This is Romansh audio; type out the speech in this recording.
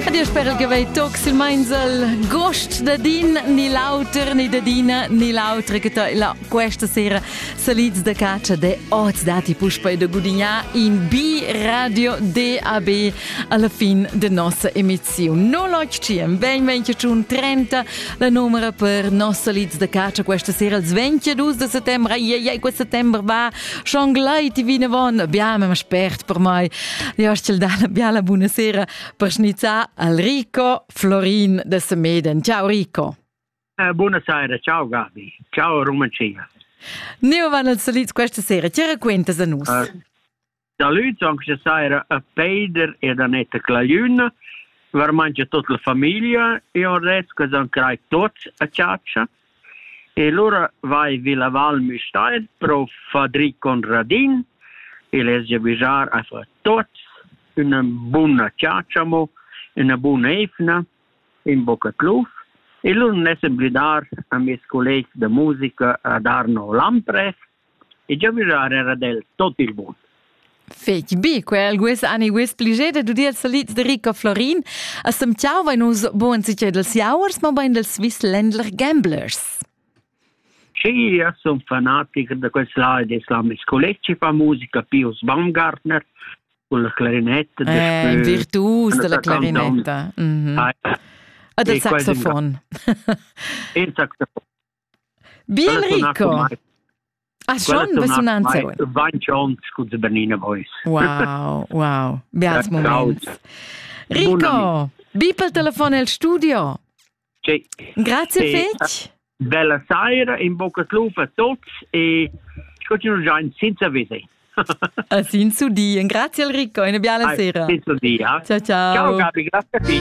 Ed io spero che vei toc sil meinsel gost da din ni l'auter ni da dina ni l'autra che la questa sera salids da caccia de oz dati puspa da gudignar in B radio DAB alla fin de nossa emizione. No l'occhiem, ben venche un 30 la numera per nossa lids da caccia questa sera il 22 de settembre, ai ai ai quel settembre va Schon gleit vinavon biamem spert per mai. Li hostel dalla biala buonasera per schnizzar al Rico Florin de Semeden. Ciao Rico. Eh, buonasera, ciao Gabi. Ciao Rumancia. Neu van els salits questa sera. Che raquentas a nus? Uh, Salüts anche sera a Peider ed Anetta Clagliun. Var mangia tot la famiglia e on res che san crai tots a ciaccia. E lura vai vi la Val Müstair pro Fadri Conradin e les gia bizar a fa tots üna buna chatscha mo, üna buna eivna, ün boca cluf e lur n'esa blidar a meis collegs da musica a dar no l'amprest e giavischar era ad el tot il bun. Fetg bi, quel guess ani guess pliget ed udiel salids de Rico Florin. A semtgau vein nus bugen sicher dels jauers, ma bein dels Swiss Ländler Gamblers. Sì, io sono fanatic da questa di Islamic College fa musica Pius Baumgartner con la clarinetta. Eh, il virtuos della clarinetta. Mm -hmm. Ah, e del saxofon. Il saxofon. Bien Rico! A schon impressionant Vanciont scusa Bernina Vois. Wow, wow, beats moments. Rico, bi pel telefon el studio. Sì. Grazie sì. fetch. Bella sera, in bocca club a tutti e continuiamo già senza vede. A senza di. Grazie Rico, una bella sera. Senza di. Eh? Ciao ciao. Ciao Gabi, grazie a te.